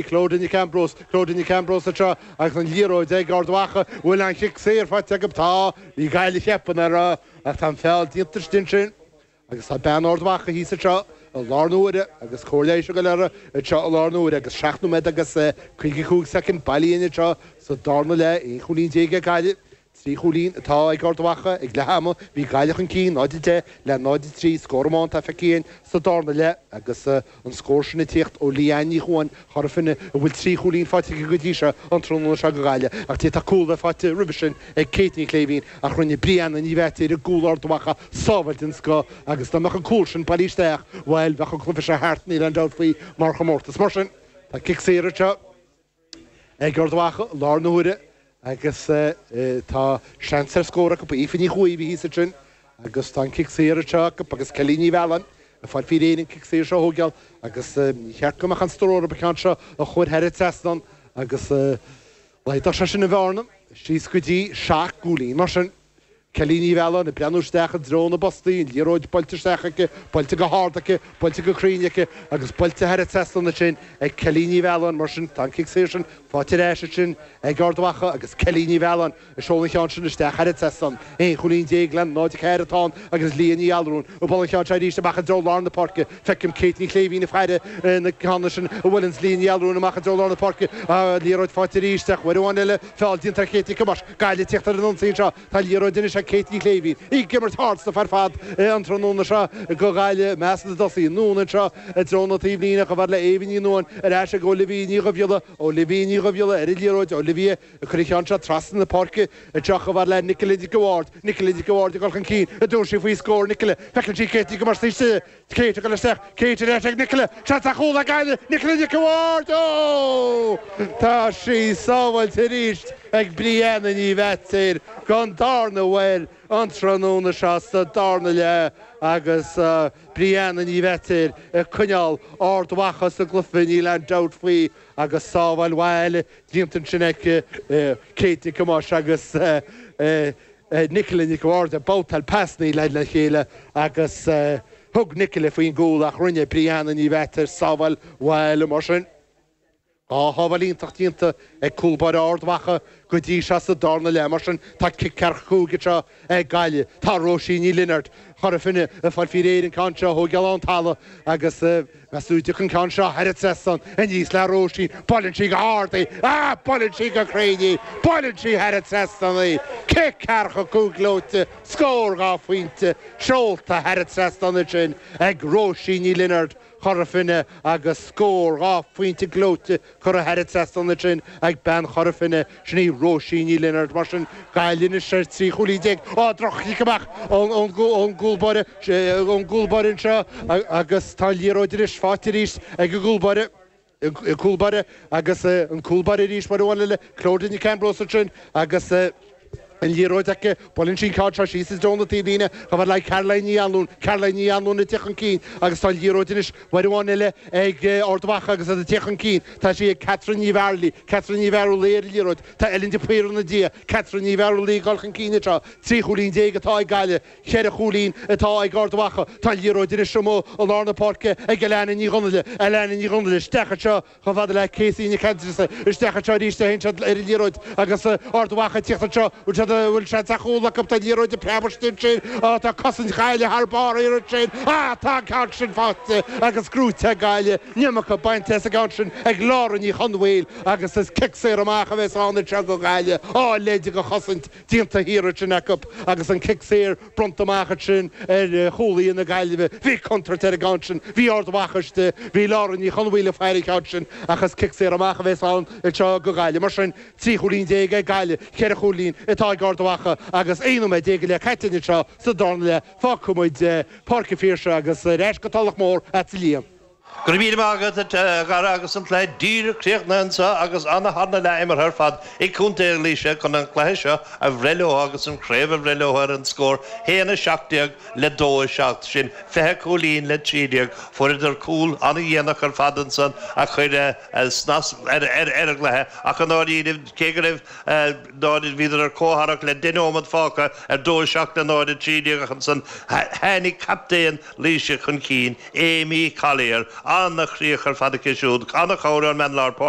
Clodagh Nic Ambrós, Clodagh Nic Ambrós anseo agus an liathróid ag Ard Mhacha, bhuel an cic saor faighte acu, tá Uí Ghadhla teipeann uirthi ach tá an feall déanta istigh ansin agus tá bean Ard Mhacha thíos anseo i láthair na huaire agus cóir leighis ag dul uirthi anseo i láthair na huaire agus seacht nóiméad agus caoga cúig soicind bailithe anseo sa darna leath, aon chúilín déag ag Gaillimh. Trí chúilín atá ag Ard Mhacha ag leath ama, bhí Gaillimh chun cinn 0-10 le 0-3, scór amháin atá feicthe againn sa dárna leath agus an scór sin ag tíocht ó Leanne Ní Chuain, Chora Finne, a bhfuil trí chúilín faighte aici go dtí seo an tráthnóna seo do Ghaillimh ach d'fhéadfadh cúl a bheith faighte roimhe sin ag Kate Ní Shléibhín ach rinne Brianna Ní Mheaitéir i gcúl Ard Mhacha sábháil den scoth agus dá mbeadh an cúl sin bailithe isteach, bhuel, bheadh an cluiche seo thart níl aon dabht faoi mar chomórtas mar sin tá cic saor anseo. ag Ard Mhacha i láthair na huaire agus tá seans ar scór acu. Aoife Ní Chuaigh a bhí thíos ansin agus tá an cic saor anseo acu agus Kelly Ní Mhealláin ag fáil faoi réir an cic saor seo a thógáil agus níor cheart go mbeadh aon stró uirthi an ceann seo a chur thar an trasnán agus laghadódh sé sin an bhearna síos go dtí seacht gcúilín. Mar sin Kelly Ní Mhealláin, ag breathnú isteach i dtreo na bpostaí, an liathróid buailte isteach aici, buailte go hard aici, buailte go cruinn aici agus buailte thar an trasnán ansin ag Kelly Ní Mhealláin, mar sin tá an cic saor sin faighte ar ais ansin ag Ard Mhacha agus Kelly Ní Mhealláin ag seoladh an cheann sin isteach thar an trasnán. Aon chúilín déag le 0, 4 atá ann agus Leah Ní Allmhuráin ag bualadh an ceann seo arís amach i dtreo lár na páirce. Feicim Kate Ní Shléibhín ag faire an ceann sin a bhuaileanns Leah Ní Allmhuráin amach i dtreo lár na páirce. Liathróid faighte arís ach uair amháin eile. Feall déanta ar Kate Nic Thomáis. Gaillimh ag teacht ar an ionsaí anseo. Tá liathróid anois ag Kate Ní Shléibhín. Í ag imirt ardstuif ar fad an tráthnóna seo do Ghaillimh. I measc na dtosaithe. Anonn anseo i dtreo na taobhlíne. Chomh fada le Aoibhinn Ní Nuain. Ar ais ag Olivia Ní Dhuibhghiolla. Olivia Ní Dhuibhghiolla ar an liathróid. Olivia ag cur an ceann seo trasna na páirce. Anseo chomh fada le Nicola Nic an Bhaird. Nicola Nic an Bhaird ag dul chun cinn. An dtabharfaidh sí faoi scór? Nicola. Feiceann sí Kate Nic Thomáis ansin istigh. Kate ag dul isteach, Kate ar ais ag Nicola, seans ar chúl ag Gaillimh, Nicola Nic an Bhaird, óóóó! Tá sé sábháilte arís ag Brianna Ní Mheaitéir don dárna uair an tráthnóna seo sa dárna leath agus Brianna Ní Mheaitéir ag coinneál Ard Mhacha sa gcluiche níl aon dabht faoi agus sábháil mhaith eile déanta ansin aici, Kate Nic Thomáis agus Nicola Nic an Bhaird ag babhtáil pasannaí lena chéile agus thug Nicola faoin gcúl ach rinne Brianna Ní Mheaitéir sábháil mhaith eile mar sin. Dhá shábháil iontach déanta ag cúl báire Ard Mhacha go dtí seo sa dárna leath mar sin tá cic ceathracha cúig anseo ag Gaillimh. Tá Róisín Ní Lionáird, Chora Finne, ag fáil faoi réir an ceann seo a thógáil ón talamh agus ag súil go dtiocfaidh an ceann seo thar an trasnán aníos le Róisín buaileann sí go hard í, ah buaileann sí go cruinn í, buaileann sí thar an trasnán í. Cic ceathracha cúig gleoite, scór dhá phointe, seolta thar an trasnán ansin ag Róisín Ní Lionáird, Chora Finne agus scór dhá phointe gleoite Cuireadh thar an trasnán ansin ag bean Chora Finne, sin í Róisín Ní Lionáird. Mar sin, Gaillimh anois ar trí chúilín déag. Á, droch-chic amach ón gcúlbáire anseo agus tá an liathróid anois fáighte arís ag an gcúlbáire, cúlbáire agus an cúlbáire arís uair amháin eile, Clodagh Nic Ambróis ansin agus. An liathróid aici. Buaileann sí an ceann seo síos i dtreo na taobh líne chomh fhad le Caroline Ní Anluain. Caroline Ní Anluain ag tíocht chun cinn agus tá an liathróid anois uair amháin eile ag Ard Mhacha agus iad ag tíocht chun cinn. Tá sí ag Catherine Ní Mhearlaí. Catherine Ní Mhearlaí ar an liathróid. Tá Ellen de Paor ina diaidh. Catherine Ní Mhearlaí ag dul chun cinn anseo. Trí chúilín déag atá ag Gaillimh. Cheithre chúilín atá ag Ard Mhacha. Tá an liathróid anois amuigh i lár na páirce ag Alanna Ní Dhonnaile. Alanna Ní Dhonnaile isteach anseo. Chomh fada le Casey Nic Aindreasa isteach anseo arís téann siad ar an liathróid agus Ard Mhacha ag tíocht anseo bhfuil siad bhfuil seans ar chúl acu tá an liathróid ag preabadh istigh ansin á tá cosaint Ghaillimh thar barr thiar ansin á tá an ceann sin faighte agus scuabtha ag Gaillimh an nimh acu bainte as an gceann sin ag Laura Ní Chonmhaoil agus is cic saor amach a bheas ann anseo go Gaillimh á togha na cosaint déanta thiar ansin acu agus an cic saor Bronnta amach ansin ar chúlaí na Gaillimhe. Bhí contúirt ar an gceann sin. Bhí Ard Mhacha istigh. Bhí Laura Ní Chonmhaoil ag faire an cheann sin. Ach is cic saor amach a bhéas ann anseo go Gaillimh. Mar sin, trí chúilín déag ag Gaillimh, ceithre chúilín atá ag Ard Mhacha agus aon nóiméad déag go leith caite anseo sa darna leath. Fágfaidh muid Páirc an Phiarsaigh agus ar ais go Tulach Mhór ag Liam. Go raibh míle maith agat, a Ghearóid, agus an cluiche díreach críochnaithe anseo agus ana-tharna leath imeartha ar fad ag Contae Laoise chun an cluiche seo a bhreith leo agus an chraobh a bhreith leo ar an scór 1, 17 le 2, 7, sin 20 cúilín le 13. Fuaireadar cúl an-dhéanach ar fad ansan a chuir snas ar an gcluiche ach i ndáiríre cé go raibh ná bhíodar ar comhtharrac le 10 nóimead fágtha ar 2, 7 le 0, 13 ach ansan tháinig captaen Laoise chun cinn Amy Collier, An-chríoch ar fad aici siúd, ana-chabhair ón mbean lár páirce.